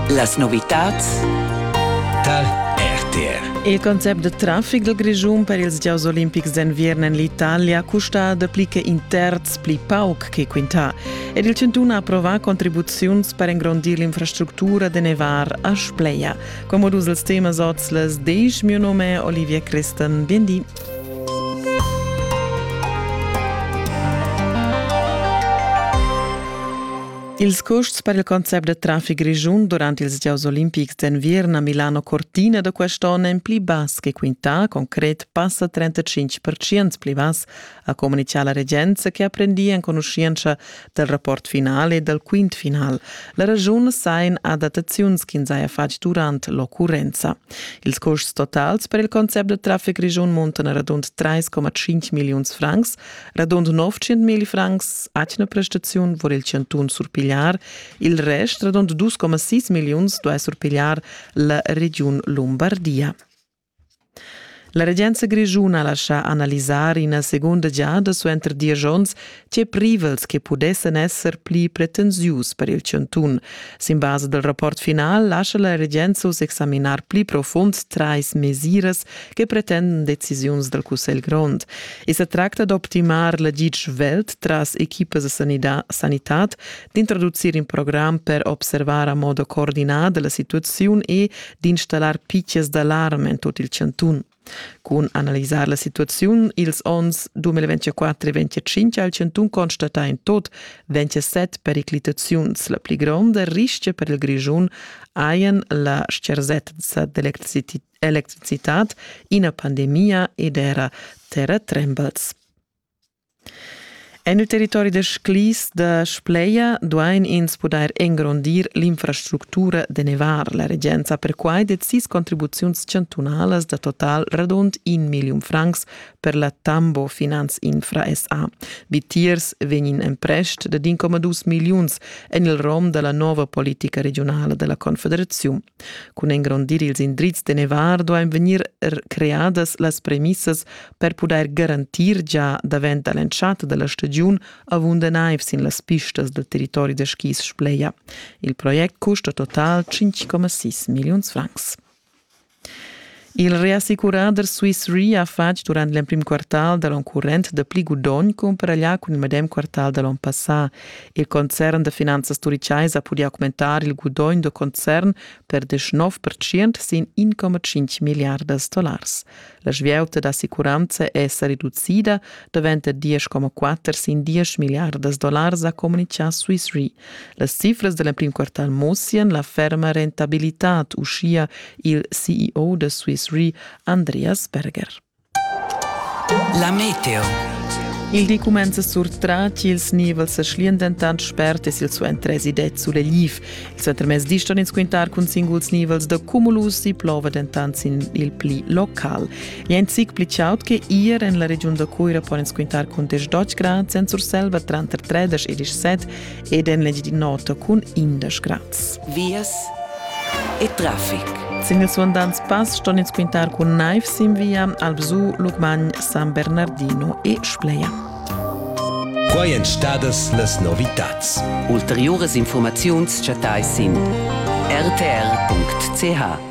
Las novitads tar RTR. Il concept de traffic dal Grischun per ils gieus olimpics d'enviern en l'Italia custa dapli che in terz pli pauc che quintà ed il Cintun ha approvà contribuziuns per engrondir l'infrastructura de nevar a Spleia. Comodus els temas oz les deich mio nome Olivier Christen. Bien di. Ils custs per il concept da traffic grischun durant ils gieus olimpics d'enviern a Milano Cortina da quest'onn èn pli bass che quintà. Concret passa 35 percent pli bass, ha communitgà la regenza che ha prendì enconuschientscha dal rapport final e dal quint final. La raschun sain adattaziuns ch'ins haja fatg durant l'occurrenza. Ils custs totals per il concept da traffic grischun muntan a radund 3,5 milliuns francs, radund 900 mil francs atgna prestaziun vor il chantun surpigliar, il rest, radund 2,6 milliuns, duai surpigliar la regiun Lombardia. La regenza grischuna lascia analisar ina segunda giada suenter diesch onns tge privels che pudessan esser pli pretensius per il chantun. Sin basa dal rapport final lascia la regenza uss examinar pli profund trais mesiras che pretenden decisiuns dal Cussegl grond. I sa tracta d'optimar l'agid svelt tras equipas da sanitad, d'introducir in program per observar a modo coordinada la situaziun e d'installar pitgas d'alarm en tut il chantun. Cun analisar la situaziun ils onns 2024 e 2025 ha il chantun constatà in tot 27 periclitaziuns. La pli gronda rischia per il Grischun hajan la scherzetza d'electricità electricitad, ina pandemia ed era terratrembels. En il territori da Sclis da Spleia duain ins pudair engrondir l'infrastructura de nevar. La regenza perquai det sis contribuziuns chantunalas da total radund in million francs per la Tambo Finanz Infra SA. Vitiers vegnin emprest da 1,2 milliuns en il rom della nova politica regionala della Confederazione. Cun engrondir ils indrizs de Nevar duain vegnir creadas las premissas per pudair garantir gia davent da l'entschatta da la stagiun avunda naiv sin las pistas dal territori da skis Spleia. Il project custa total 5,6 milliuns francs. Il reassicurader Swiss Re ha fatg durant l'emprim quartal da l'on current da pli gudogn cumparaglià cun il medem quartal da l'on passà. Il concern da finanzas turichais ha pudì augmentar il gudogn da concern per 19% sin 1,5 milliardas dollars. La svieuta d'assicuranza è sa reducida davent da 10,4 sin 10 milliardas dollars, ha communitgà Swiss Re. Las cifras da l'emprim quartal mussian la ferma rentabilitad, uschia il CEO da Swiss Re Andreas Berger. La meteo. Il di cumenza surtrat, ils nivels sa schlian dentant spert e silsuenter tresi det sulegliv. Il suentermezdi ston ins quintar cun singuls nivels da cumulus, si plova dentant sin il pli local. Jent sic pli chaud che ir en la regiun da Cuira pon ins quintar cun 10 Deutsch grad en Surselva tranter 30 e 17 ed en l'Engiadin'Ota cun 11 grads. Vias e traffic. Sin il suandants pass ston ins quintar cun naiv sin via Albzù, Lucmagn, San Bernardino e Spleia. Quai èn stadas las novitads. Ulteriuras informaziuns chattais sin rtr.ch.